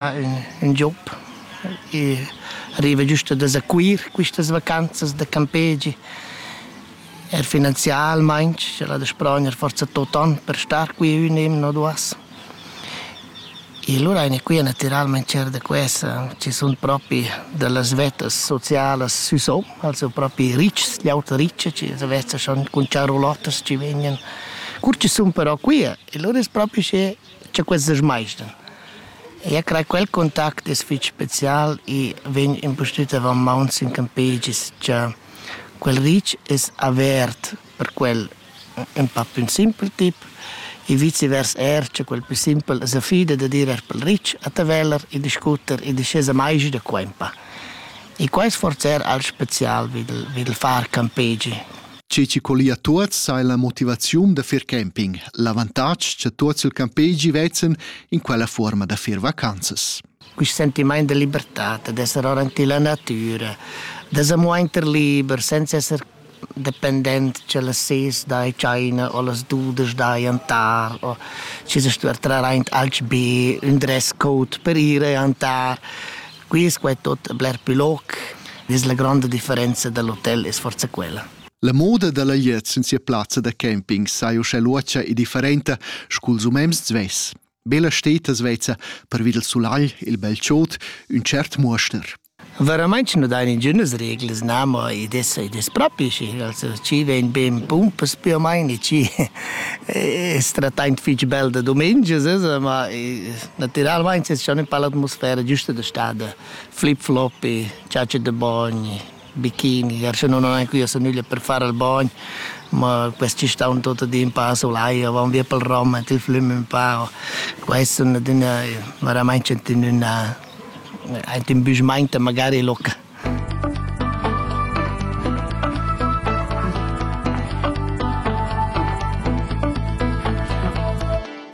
Ha ün job e arriva giüst da s'acuir quistas vacanzas da campegi. Er finanzialmaing, sch'el ha da sprogner forsa tot on per star qui ün emna o duas. E lura aina qui natüralmaing tschert da quessa chi sun propi da las vettas socialas sü so, also propi ricchs, gl'auta riccia chi as vezza schon cun charrulottas chi vegnan. Cur chi sun però quia e lura es propi usché cha questas maistas. Eu craj quel contact es fich special e vegn impustüt avant maun sin campegis cha quel ritsch es avert per quel ün pa pü simpel tip e viceversa eir cha quel pü simpel as affida dad ir eir pel ritsch a Taveller e discutter e dischaza maigi da qua ün pa. E quai es forsa eir alch special vi d'l vi d'l far campegi. Tge che collia tuots sai la motivaziun da fir camping, l'avantatg cha tuots il campegi vezzan in quella fuorma da fir vacanzas. Quist sentimaint de libertà, d'esser ora in la natura, d'esser muainter liber, senza esser dependent che las ses dai China o las dudas dai antar o ci se stuer traraint alch be un dress code per ire antar Quis qua è tot bler plü loc, vis la gronda differenza dal hotel es forza quella. La moda da la glieud sin sia plazza da camping sai uschè luotscha e differenta scu'ls umens svess. Bella steta svezza per vid il sulagl e il bel chod, ün cert muoster. Veramente non dai ningünas reglas, na, ma i des, i des propi, also ci vegn ben pumpas più o meno, ci è stratant fitch bel da domenica, ma Natüralmaing es cha nus pa l'atmosfera giüsta da stà da flip-floppy, ciaci da bogn, bikini, ars nun ho neanche üa nüglia per far al bogn, ma quest chi staun tuot ad in pa sulai o vaun via pel rom, mettü il flüm ün pa, quaists sun adüna veramaing aint in büschmainta magari loca.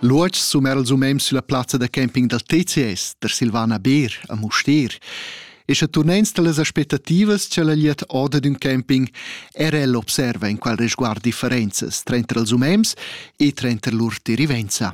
L'uotg sum era els umens sulla plazza da camping dal TCS, der Silvana Beer, a Mustér. E sche turnens dallas aspettativas che la liet oda d'ün camping, era el observa in qual resguard differenzas tranter els umens e tranter lur derivenza.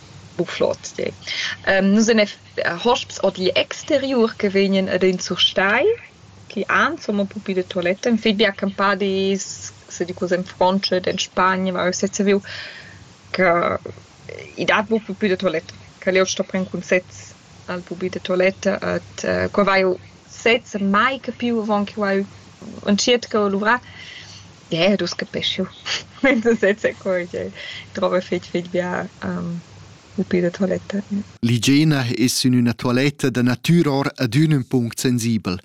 Bu flot de. Ähm, nus en hosps odli exteriur che vegnen ed in surstei che han somma pupi de toilette. En fit bi accampà dis, se di cose in Francia, in Spagna, ma sez saviu che i dat bu pupi de toilette. Che jeu sto pren cun sez al pupi de toilette et äh, qua vaiu sez mai capiu avon che vaiu entschiet ch'eu luvrar. Ie, dus capeschiu. Sezza cur ch'ei drova fetg fetg bia il pe da toiletta. L'igiena es sün üna toiletta da natüra or adün ün punct sensibel.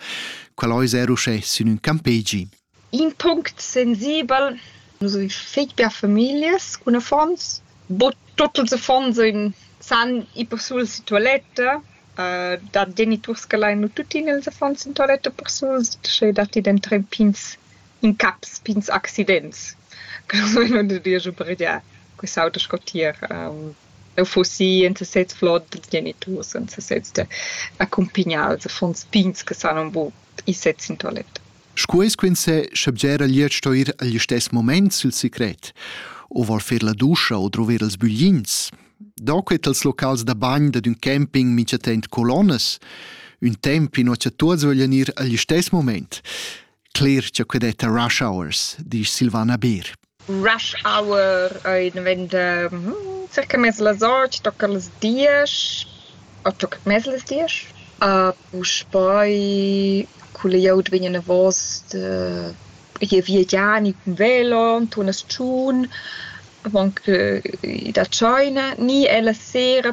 Quel ais eir uschè sün ün campegi. In punct sensibel, nus avin fetg bia famiglias cun affons. Bod tuot ils affons sun san ir persuls in toiletta. da geniturs che lain nu tuttina ils affons in toiletta persuls, sche datti dentant pigns incaps pigns accidents che nus vein udir giu pareglià quest'auter sco tier eu fuss i en sesez flot dals geniturs en sesez da accumpignar els affons pigns che san aunc buc ir sezs in toiletta. Sco eis quinzè, schebgera gliez sto ir agl istess moment sil secret, o vol fer la duscha o druver els büglins. Da quei tals locals da bagn dad ün camping mintgatent colonnas, ün temp inua cha tuots voglian ir agl istess moment. cler cha que detta rush hours, disch Silvana Beer. Rush hour ei diventa hm, circa mez las ocht, tocca las diesch, o tocca mez las diesch. A puspei culle glieud vegnan davos de je viagiani cun velo, tunas tschun, avant che da China, ni è la sera